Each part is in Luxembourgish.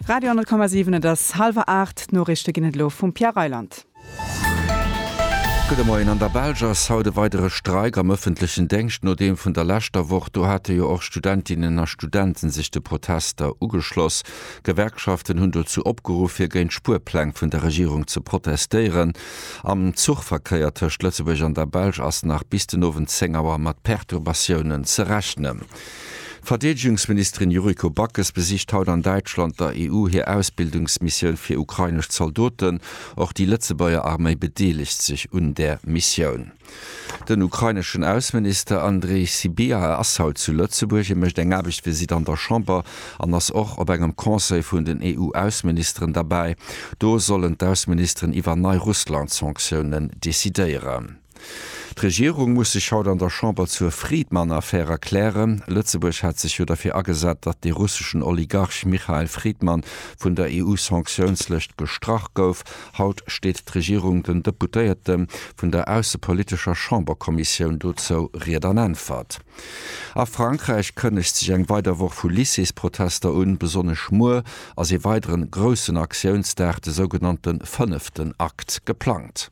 Radio 10,7 Et ass hallwer aacht, d'Noriichte ginn et elo vum Pierre Reyland. Gudde Moien, An der Belsch ass haut e weidere Streik am ëffentlechen Déngscht no deem vun der leschter Woch. Do hate jo och Studentinnen a Studenten sech de Protester ugeschloss. D'Gewerkschaften hunn dozou opgeruff, fir géint d'Spuerpläng vun der Regierung ze protestéieren. Am Zuchverkéier tëscht Lëtzebuerg an der Belsch ass nach bis den Owend 10 Auer mat Perturbatiounen ze rechnen. D'Verdeedegungsministerin Yuriko Backes besicht haut an Däitschland der EU hir Ausbildungsmissioun fir ukrainesch Zaldoten. Och déi Lëtzebuerger Arméi bedeelegt sech un där Missioun. Den ukraineschen Ausseminister Andrii Sybiha ass haut zu Lëtzebuerg. Hie mécht eng Aarbechtsvisitt an der Chamber an ass och op engem Conseil vun den EU-Ausseministeren derbäi. Do sollen d'Ausseministeren iwwer nei Russland-Sanktiounen decidéieren. D'Regierung muss sech haut an der Chamber zur Friedmann-Affär erklären. Lëtzebuerg hat sech jo derfir agesat, datt de russeschen Oligarch Michael Friedmann vun der EU-Sanktiounslëscht gestrach gouf. Haut steet d'Regierung den Deputéierte vun der aussepolitescher Chamberkommissioun dozou Ried an Äntwert. A Frankräich kënnegt sech eng weider Woch vu Lycées-Protester un. Besonnesch muer ass ee weideren groussen Aktiounsdag, de sougenannte fënneften Akt, geplangt.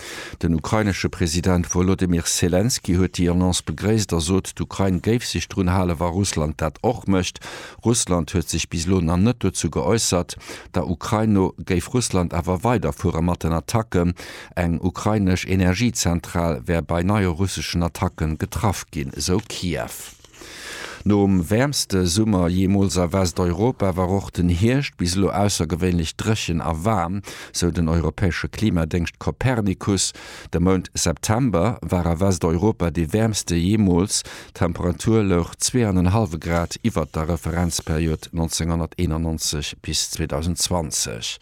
Den ukrainesche President Wolodymyr Selenskyj huet déi Annonce begréisst a sot, d'Ukrain géif sech drun halen, wa Russland dat och mécht. Russland huet sech bis elo nach net dozou geäussert. Der Ukrain no géif Russland awer weiderfuere mat den Attacken. Eng ukrainesch Energiezentral wär bei neie russeschen Attacke getraff ginn, esou Kiew. Nom wäermste Summer jeemools a Westeuropa war och den Hierscht bis elo aussergewéinlech dréchen a waarm, sou den europäesche Klimadéngscht Copernicus. De Mount September war a Westeuropa dee wäermste jeemools, d'Temperatur louch zwee an en hallwe Grad iwwert der Referenzperiod 1991 bis 2020.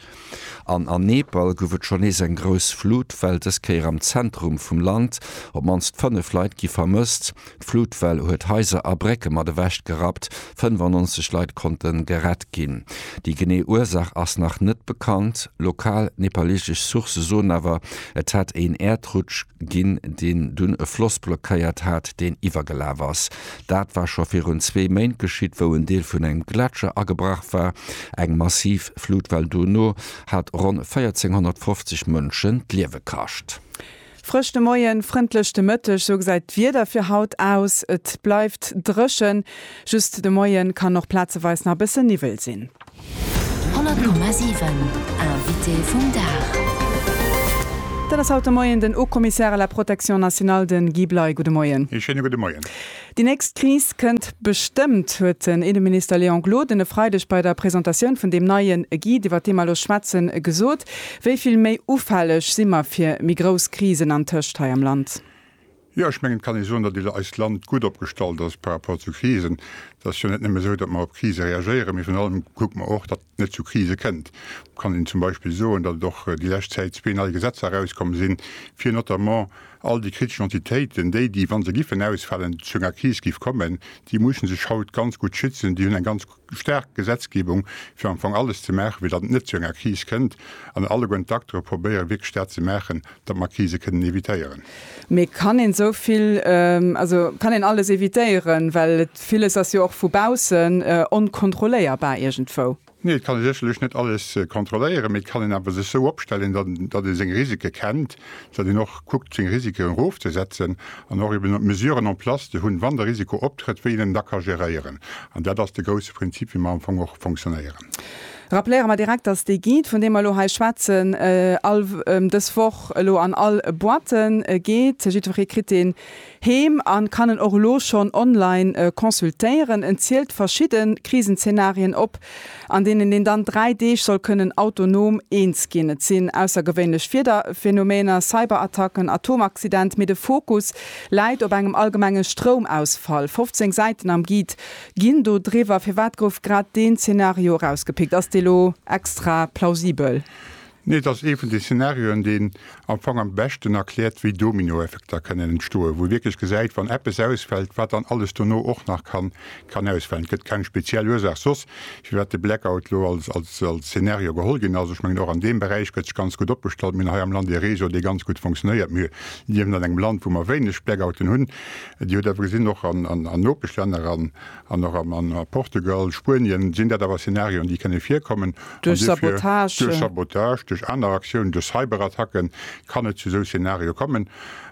An an Nepal gouf et schonn nees eng grouss Flutwell, dës Kéier am Zentrum vum Land. Op d'mannst 5 Leit gi vermësst. D'Flutwell huet Haiser a Brécke mat ewech gerappt. 95 Leit konnte gerett ginn. Déi genee Ursaach ass nach net bekannt. Lokal nepaleesesch Sourcë soen awer, et hätt een Äerdrutsch ginn, deen dunn e Floss blockéiert hat, deen iwwergelaf ass. Dat war scho virun zwee Méint geschitt, wou en Deel vun engem Gletscher agebrach war. Eng massiv Flutwell dono hat ronn 1.450 Mënschen d'Liewe kascht. Frësch de Moien, frëndlech de Mëtteg, sou gesäit d'Wieder fir haut aus. Et bleift dréchen, just de Moie kann och plazeweis nach e bësse Niwwel sinn. 100,7 Invité vum Dag. Dat ass haut de Moien den Haut-Commissaire à la Protection nationale, de Guy Bley. Gudde Moien. Ee schéine gudde Moien. Déi nächst Kris kënnt bestëmmt, huet den Inneminister Léon Gloden e Freideg bei der Presentatioun vun deem neien Guide, iwwert dee mer elo schwätzen, gesot. Wéi vill méi ufälleg si mer fir méi grouss Krisen antëscht hei am Land? Jo, ech mengen, et kann ee soen, datt eist Land gutt opgestallt ass par rapport zu Krisen. Et ass jo net nëmme esou, datt mer op Krise reagéieren, mee virun allem kucke mer och, datt et net zu Krise kënnt. Et kann een zum Beispill soen, datt et och déi lescht Zäit zwee nei Gesetzer erauskomm sinn, fir notamment all déi kritesch Entitéiten, déi, déi, wa se giffen ausfalen, zu enger Kris giff kommen, déi musse sech haut ganz gutt schützen, déi hunn eng ganz. Staark Gesetzgebung, fir am Fong alles ze maachen, fir datt et net zu enger Kris kënnt, an alleguerten d'Acteure probéieren wierklech dat ze maachen, datt mer Krise kënnen evitéieren. Mee kann een esou vill, also kann een alles evitéieren? Well villes ass jo och vu baussen onkontrolléierbar iergendwou. Nee, et kann ee sécherlech net alles kontrolléieren, mee et kann een awer sech esou opstellen, datt ee seng Risike kennt datt een och kuckt seng Risiken erofzesetzen an och eben Mesuren en place ze hunn, wann de Risiko optrëtt, wéi een en da ka geréieren. An dat ass de grousse Prinzip, wéi mer am Fong och fonctionnéieren. Rappeliere mer direkt, datt dee Guide, vun deem mer elo hei schwätzen, all dës Woch elo an all Boîte geet. Jiddweree kritt deen Heem an kann en och elo schonn online consultéieren. En zielt verschidden Krisenzeenarien op, an deenen een dann 3 Deeg soll kënnen autonom eens ginn. Et sinn aussergewéinlech Wiederphenomener, Cyberattacken, Atomaccident, mee de Fokus läit op engem allgemenge Stroumausfall. 15 Säiten am Guide ginn do driwwer. Firwat gouf grad deen Zeenario erausgepickt? Ass dee lo extra plausibel? Nee, et ass ee vun de Szenarioen, deen am Fong am beschten erkläert, wéi Dominoeffekter kënnen entstoen, wou ee wierklech gesäit, wann eppes ausfält, wat dann alles dono och nach kann ausfalen. Et gëtt keng speziell Ursaach soss, firwat de Blackout elo als Szenario geholl ginn ass. Ech mengen, och an deem Beräich gëtt sech ganz gutt opgestallt. Mir hunn hei am Land ee Réseau, dee ganz gutt funktionéiert. Mir liewen an engem Land, wou mer wéineg Blackouten hunn. Dir hutt awer gesinn, och an Nopeschlänner, An och a Portugal, Spuenien sinn dat awer Szenarioen, déi kënne virkommen. An duerfir, duerch Sabotage, duerch aner Aktiounen, duerch Cyberattacke kann et zu esou Szenarioe kommen.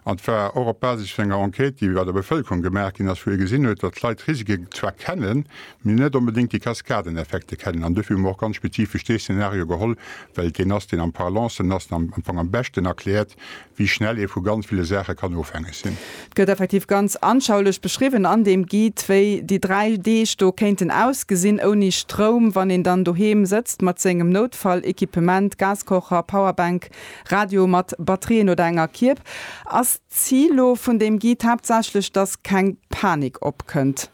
An et war och op Basis vun enger Enquête, déi bei der Bevëlkerung gemaach ginn ass, wou ee gesinn huet, datt d'Leit d'Risike zwar kennen, mee net onbedéngt déi Kaskadeneffekte kennen. An duerfir hu mer och ganz spezifesch dee Szenario geholl, well et deen ass, deen am parlancen ass an am Fong am beschten erkläert, wéi schnell ee vu ganz ville Saache kann ofhängeg sinn. Et gëtt effektiv ganz anschaulech beschriwwen an deem Guide, wéi déi dräi Deeg do kéinten ausgesinn ouni Stroum, wann een dann doheem sëtzt mat sengem Noutfalléquipement, Gaskocher, Powerbank, Radio mat Batterien oder enger Kierb. Ass d'Zil lo vun deem Guide haaptsächlech, dass keng Panik opkënnt?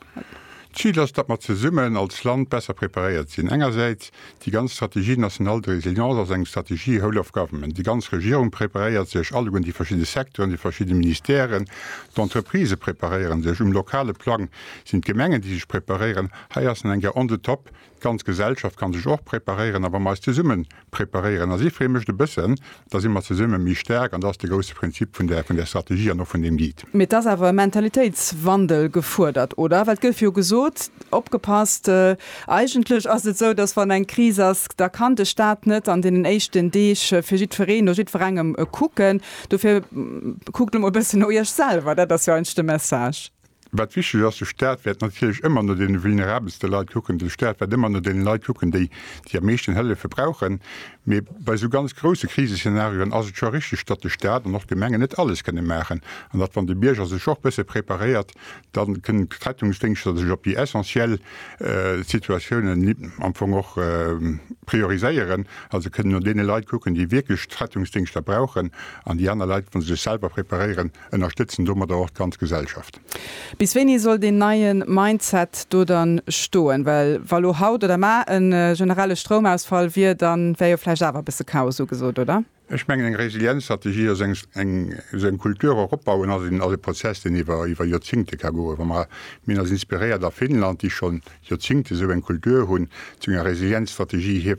D'Zil ass, datt mer zesummen als Land besser preparéiert sinn. Engersäits, déi ganz Stratégie nationale de résilience ass eng Stratégie whole of government. Déi ganz Regierung preparéiert sech, alleguer déi verschidde Secteuren, déi verschidde Ministèren, d'Entreprisë preparéieren sech. Um lokale Plang sinn d'Gemengen, déi sech preparéieren. Hei ass nach eng Kéier on the top D'ganz Gesellschaft kann sech och preparéieren a wa mer eis zesumme preparéieren, a si freeë mech e bëssen, da si mer zesumme méi staark an dat ass de grousse Prinzip vun där vun där Strategie an och vun deem Guide. Mee et ass awer e Mentalitéitswandel gefuerdert, oder? Well et gouf jo gesot, opgepasst, eigentlech ass et esou, datt wann eng Kris ass, da kann de Stat net an deenen éischten Deeg fir jiddwereen, no jiddwerengem kucken. Dofir kuckt elo mol e bëssen no Iech selwer, dat ass jo eigentlech de Message. Wat wichteg ass, de Staat wäert natierlech ëmmer no deene vulnerabelste Leit kucken, de Staat wäert ëmmer no deene Leit kucken, déi déi am meeschten Hëllefe brauchen. Mee bei esou ganz grousse Kriseszenarioen ass et scho richteg, datt de Staat an och d'Gemengen net alles kënne maachen an datt, wann de Bierger sech och bësse preparéiert, da kënnen d'Rettungsdéngschter sech op déi essentiell Situatiounen am Fong och prioriséieren, also kënnen no deene Leit kucken, déi wierklech d'Rettungsdéngschter brauchen an déi aner Leit, wa se sech selwer preparéieren, ënnerstëtzen domadder och d'ganz Gesellschaft. Bis wéini soll deen neien Mindset do dann stoen? Well wa lo haut oder mar e generelle Stroumausfall wier, dann wär jo vläicht awer e bësse Chaos ugesot, oder? Ech mengen eng Resilienzstrategie ass eng eng esou eng Kultur och opbauen ass en ass e Prozess deen iwwer iwwer Joerzingte ka goen. Wa mer mir eis inspiréiert a Finnland, déi schonn Joerzingte esou eng Kultur hunn, zu enger Resilienzstrategie hie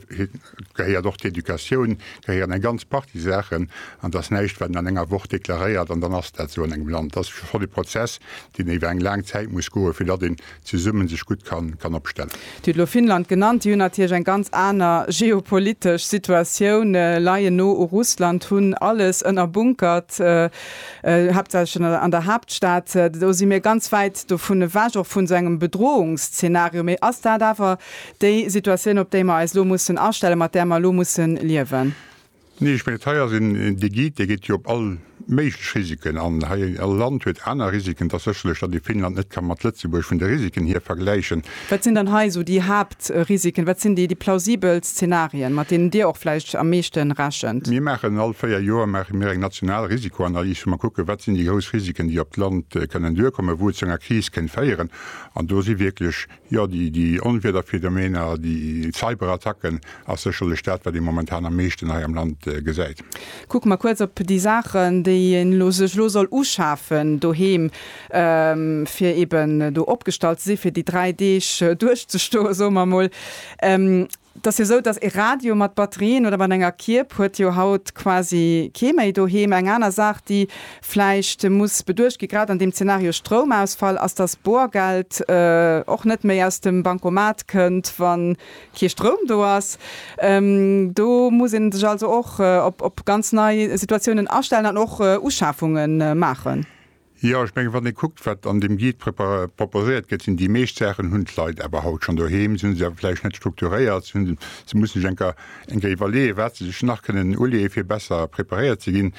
Et gehéiert och d'Educatioun, et gehéieren eng ganz Partie Saachen. An et ass näischt, wat een an enger Woch deklaréiert an dann ass dat esou an engem Land. Et ass schonn e Prozess, deen iwwer eng laang Zäit muss goen, fir datt een zesumme sech gutt kann opstellen. Dir hutt elo Finnland genannt. Déi hunn natierlech eng ganz aner geopolitesch Situatioun, leien no u Russland, hunn alles ënnerbunkert, haaptsächlech an der Haaptstad. Do si mir ganz wäit dovun ewech, och vun esou engem Bedrohungsszenario. Mee ass dat awer Déi Situatioun, op déi mer eis elo mussen astellen, mat där mer elo mussen liewen. Nee, ech mengen, hei ass een Digit, dee geet jo op all méiglech Risiken an. Hei, all Land huet aner Risiken. Et ass sécherlech, datt ee Finnland net ka mat Lëtzebuerg vun de Risiken hier vergläichen. Wat sinn dann hei esou déi Haaptrisiken? Wat sinn déi plausibel Szenarien, mat deenen Dir och vläicht am meeschte rechent? Mir maachen all véier Joer maache mir eng national Risikoanalys, wou mer kucken, wat sinn déi grouss Risiken, déi op d'Land kënnen duerkommen, wou et zu enger Kris kéint féieren. An do si wierklech Jo, déi Onwiederphenomeener, déi Cyberattacken ass sécherlech dat, wat ee momentan am meeschten hei am Land gesäit. Kucke mer kuerz op déi Saachen, déi een elo sech elo soll uschafen doheem, fir eben do opgestallt ze si fir déi dräi Deeg duerchzestoe soe mer emol. 't ass jo esou, dass e Radio mat Batterien oder mat enger Kierb huet jo haut quasi kee méi doheem. Eng aner Saach, déi vläicht muss beduecht gi grad an deem Zenario Stroumausfall, ass, dass Boergeld och net méi aus dem Bancomat kënnt, wa kee Stroum do ass. Do muss ee sech also och op ganz nei Situatiounen astellen an och Uschafunge maachen. Jo, ech menge wann ee kuckt, wat an deem Guide proposéiert gëtt, sinn déi meescht Saachen, hunn d'Leit awer haut schonn doheem. Se hu se awer vläicht net strukturéiert, se hunn, se mussen sech enker, enker iwwerleeën, wat se sech nach kënnen uleeën, fir besser preparéiert ze ginn.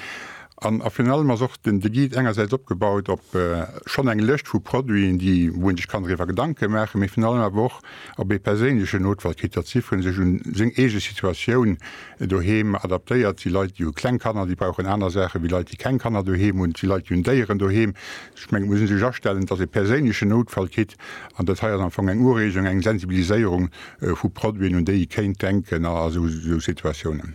An, a virun allem ass och den, de Guide engersäits opgebaut op schonn eng Lëscht vu Produiten, déi, wou ee sech kann driwwer Gedanke maachen, mee virun allem awer och op ee perséinlechen Notfall kritt, datt jiddweree sech un seng eege Situatioun Doheem adaptéiert, si Leit, déi hu kleng Kanner, déi brauchen aner Saache wéi Leit, déi keng Kanner doheem hunn, si Leit, déi hunn Déieren doheem. Ech mengen, et muss ee sech astellen, datt ee perséinlechen Noutfall kritt. An dat hei ass am Fong eng Ureegung, eng Sensibiliséierung vu Produiten, un déi ee kéint denken a sou Situatiounen.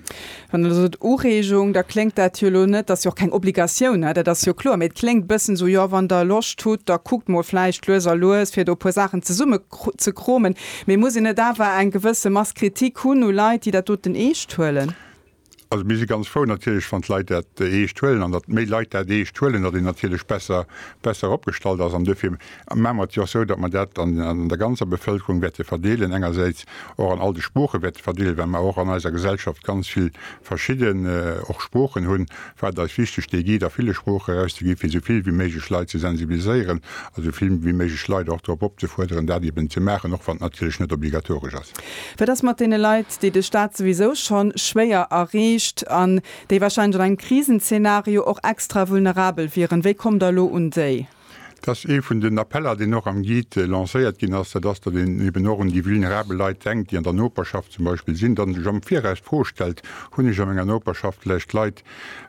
Wann Der elo sot Ureegung, da kléngt dat jo elo net, dat ass jo och keng Obligatioun, dat ass jo kloer, mee et kléngt e bëssen esou, jo, wann Der Loscht hutt, da kuckt mol vläicht lues a lues, fir do e puer Saachen zesumme ze kromen, mee muss een net awer eng gewësse Mass Kritik hunn u Leit, déi dat doten eescht huelen? Also mir si ganz frou natierlech, wann d'Leit dat eescht huelen, an datt méi Leit dat eescht huelen, datt een natierlech besser besser opgestallt ass. An duerfir maache mer et jo och esou, datt mer dat an an der ganzer Bevëlkerung wäerte verdeelen, engersäits och an all de Sprooche wäerte verdeelen, well mer och an eiser Gesellschaft ganz vill verschidden och Sproochen hunn, war et eis wichteg dee Guide a ville Sproochen erauszeginn, fir esou vill wéi méiglech Leit ze sensibiliséieren a esou vill wéi méiglech Leit och drop opzefuerderen, dat eben ze maachen, och wann et natierlech net obligatoresch ass. Wat ass mat deene Leit, déi de Staat souwisou schonn schwéier erreecht an déi wahrscheinlech an engem Krisenzeenario och extra vulnerabel wieren? Wéi kommt Der elo un déi? Dat ass ee vun den Appeller, deen och am Guide lancéiert ginn ass, dat ass, datt een eben och un déi vulnerabel Leit denkt, déi an der Noperschaft zum Beispill sinn, datt ee sech am Viraus d'Fro stellt, Hunn ech a menger Noperschaft vläicht Leit,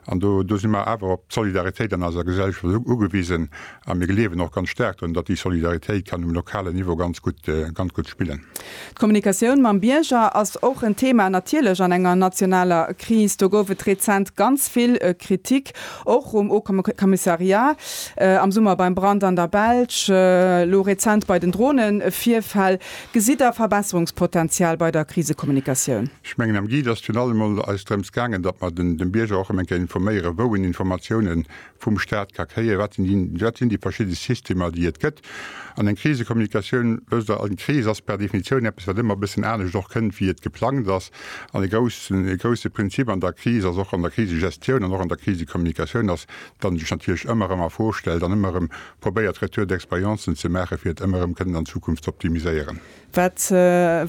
an do si mer awer op d'Solidaritéit an eiser Gesellschaft ugewisen a mir gleewen och ganz staark drun, datt déi Solidaritéit kann um lokalen Niveau ganz gutt, ganz gutt spillen. D'Kommunikatioun mam Bierger ass och en Thema, natierlech an enger nationaler Kris. Do gouf et rezent ganz vill Kritik, och um Haut-Commissariat, am Summer beim Brand an der Belsch, elo rezent bei den Dronevirfäll. Gesitt Der Verbesserungspotenzial bei der Krisekommunikatioun? Ech mengen, am Guide ass virun allem emol eis drëms gaangen, datt mer dem Bierger och erëm eng Kéier informéieren, wou en Informatiounen vum Staat ka kréien, wat sinn déi, wat sinn déi verschidde Systemer, déi et gëtt. An eng Krisekommunikatioun, wësst Der, eng Kris ass per Definitioun eppes, wat ëmmer e bëssen anescht och kënnt, wéi et geplangt ass. An e groussen, e grousse Prinzip an der Kris ass, och an der Krisegestioun an och an der Krisekommunikatioun ass, datt een sech natierlech ëmmer erëm a Fro stellt an ëmmer erëm probéiert, Retour d'expérience'en ze maachen, fir et ëmmer erëm kënnen an Zukunft z'optimiséieren. Wat,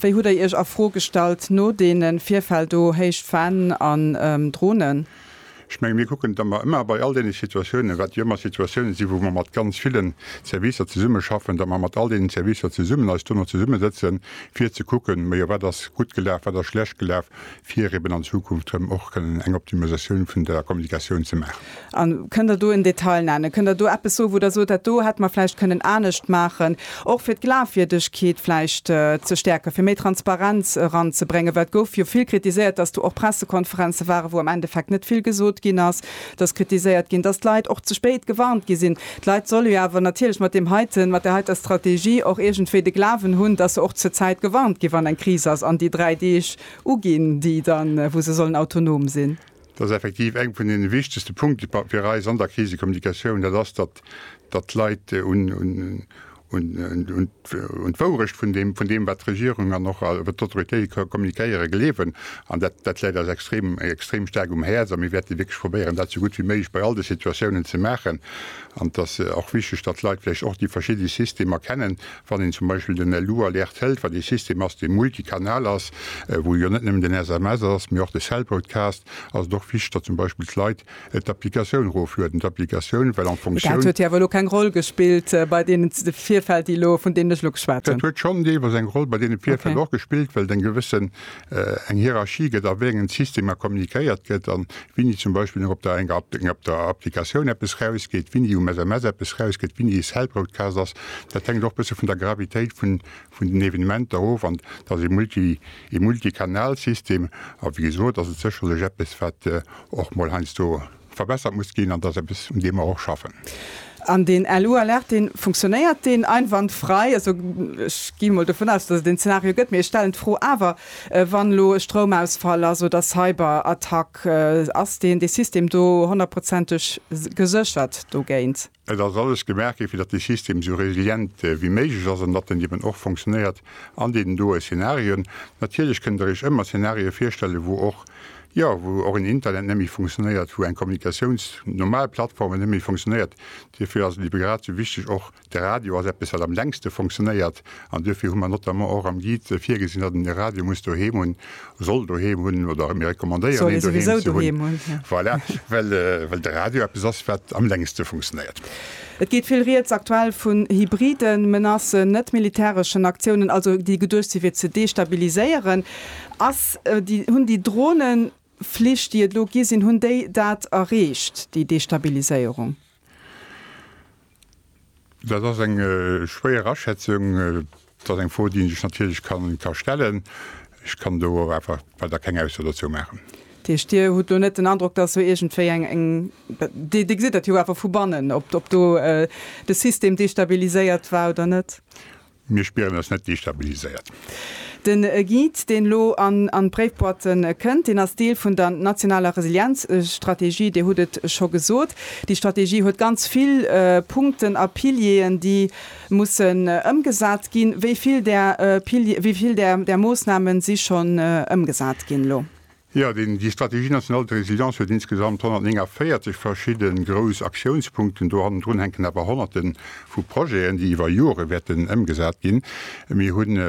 wéi hutt Der Iech a Fro gestallt no deene Virfäll do, héich Fanen an Dronen? Ech menge mir kucken da mer ëmmer bei all deene Situatiounen, wat jo ëmmer Situatiounen sinn, wou mer mat ganz ville Servicer zesummeschaffen, datt mer mat all deenen Servicer zesummen eis dono zesummesëtzen, fir ze kucken, ma jo wat ass gutt gelaf, wat ass schlecht gelaf, fir eben an Zukunft erëm och kënnen eng Optimisatioun vun der Kommunikatioun ze maachen. A kënnt Der do en Detail nennen? Kënnt Der do eppes soen, wou Der sot, dat do hätte mer vläicht kënnen anescht maachen? Och fir d'Glafwierdegkeet vläicht ze stäerken, fir méi Transparenz eranzebréngen, well et gouf jo vill kritiséiert, dass do och Pressekonferenze waren, wou am Endeffekt net vill gesot ginn ass. Et ass kritiséiert ginn, dass d'Leit och ze spéit gewarnt gi sinn. D'Leit solle jo awer natierlech mat deem heiten, mat där heiter Strategie och iergendwéi de Glawen hunn, dass se och zur Zäit gewarnt ginn, wann eng Kris ass, an déi dräi Deeg uginn, déi dann, wou se sollen autonom sinn. Dat ass effektiv eng vun deene wichtegste Punkte fir eis an der Krisekommunikatioun, dat ass, datt d'Leit un d'Wourecht vun deem, wat d'Regierung an och wat d'Autoritéite kommunikéiere gleewen. An dat läit eis extrem staark um Häerz a mir wäerte wierklech probéieren, dat esou gutt wéi méiglech bei all de Situatiounen ze maachen. An et ass och wichteg, datt d'Leit vläicht och déi verschidde Systemer kennen, Wann een zum Beispill den Elu Alert hëlt, wat ee System ass, dee multikanal ass, wou jo net nëmmen den SMS ass, mee och de Cell Broadcast, ass et och wichteg, datt zum Beispill d'Leit d'Applikatioun eroflueden, d'Applikatioun, well en Fonctioun. Dat huet jo awer elo keng Roll gespillt bei deenen Virfäll, déi elo, vun deenen ech elo geschwat hunn. Dat huet schonn deelweis eng Roll bei deene Virfäll och gespillt, well et eng gewëssen eng Hierarchie gëtt, a wéi engen Systemer kommunikéiert gëtt, a wini zum Beispill op der enger op der Applikatioun eppes rausgeet, wini um SMS eppes rausgëtt, wini e Cell Broadcast ass, dat hänkt och e bësse vun der Gravitéit vun vun den Evenementer of. An et ass e Multi e Multikanalsystem, a wéi gesot ass et sécherlech eppes, wat och mol heiansdo, verbessert muss ginn, an dat ass eppes, un deem mer och schaffen. An deen LU Alert, dee funktionéiert deen einwandfrei? Also ech gi mol dovun aus, dass et deen Zeenario gëtt, mee ech stellen d'Fro awer, wann elo e Stroumausfall ass oder Cyberattack, ass deen, dee System do honnertprozenteg geséchert dogéint? Et ass alles gemaach gi fir datt de System esou resilient wéi méiglech ass an datt en eben och fonctionnéiert an deenen doe Szenarien. Natierlech kënnt der iech ëmmer Szenarië virstellen, wou och, jo, wou och en Internet net méi fonctionnéiert, wou eng Kommunikatiouns-, normal Plattformen net méi fonctionnéiert. Dofir ass et eben grad esou wichteg, och de Radio ass eppes wat am längste fonctionnéiert, An duerfir hu mer notamment och am Guide virgesinn, datt een e Radio muss doheem hunn, soll doheem hunn oder mir recommandéieren een doheem ze hunn. Voilà, well, well de Radio eppes ass, wat am längste funktionéiert. Et geet vill Rieds aktuell vun hybriden Menacen, net-militäreschen Aktiounen, also déi geduecht si fir ze destabiliséieren. Ass déi, hunn déi Droneflich, déi et elo gi sinn, hunn déi dat erreecht, déi Destabiliséierung? Dat ass eng schwéier Aschätzung. Dat ass eng Fro, déi ee sech natierlech ka stellen. Ech kann do awer einfach weider keng Ausso dozou maachen. Dat heescht, Dir hutt elo net den Androck, datt do iergendwéi eng, Dir gesitt dat jo awer vu bannen, ob do de System destabiliséiert war oder net? Mir spieren eis net destabiliséiert. De Guide, deen elo an an d'Bréifboîte kënnt, deen ass Deel vun der nationaler Resilienzstrategie. Dir hutt et scho gesot, déi Strategie huet ganz vill Punkten a Pilieren, déi mussen ëmgesat ginn. Wéi vill där Pilier, wéi vill där Moosnamen si schonn ëmgesat ginn elo? Jo, déi Stratégie nationale de résilience huet insgesamt 149 verschidde grouss Aktiounspunkten. Do hannendrun hänken awer Honnerte vu Projeten, déi iwwer Jore wäerten ëmgesat ginn. Mir hunn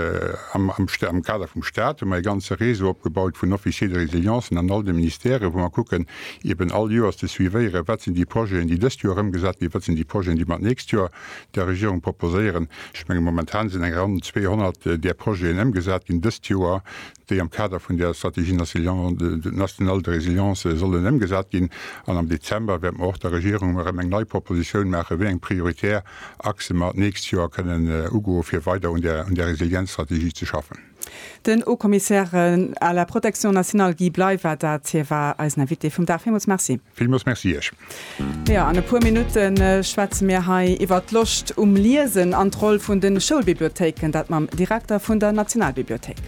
am Kader vum Stat hu mer e ganze Réseau opgebaut vun Officiers de résilience an all de Ministèrë wou mer kucken eben all Joers ze suivéieren, wat sinn déi Projeten, déi dëst Joer ëmgesat ginn, wat sinn déi Projeten, déi mer d'nächst Joer der Regierung proposéieren. Ech menge momentan sinn eng Ronn 200 där Projeten ëmgesat ginn dëst Joer. déi am Kader vun der Stratégie nationale de résilience sollen ëmgesat ginn, an am Dezember wäerte mer och der Regierung erëm eng nei Propositioun maachen, wéi eng prioritär Achse mer d'nächst Joer kënnen ugoen, fir weider un der Resilienzstrategie ze schaffen. Den Haut-Commissaire à la protection nationale Guy Bley war dat. Hie war eisen Invité vum Dag. Villmools Merci. Villmools Merci Iech. Jo, an e puer Minutte schwätze mir hei iwwert d'Loscht um Liesen an d'Roll vun de Schoulbibliothéiken. Dat mam Direkter vun der Nationalbibliothéik.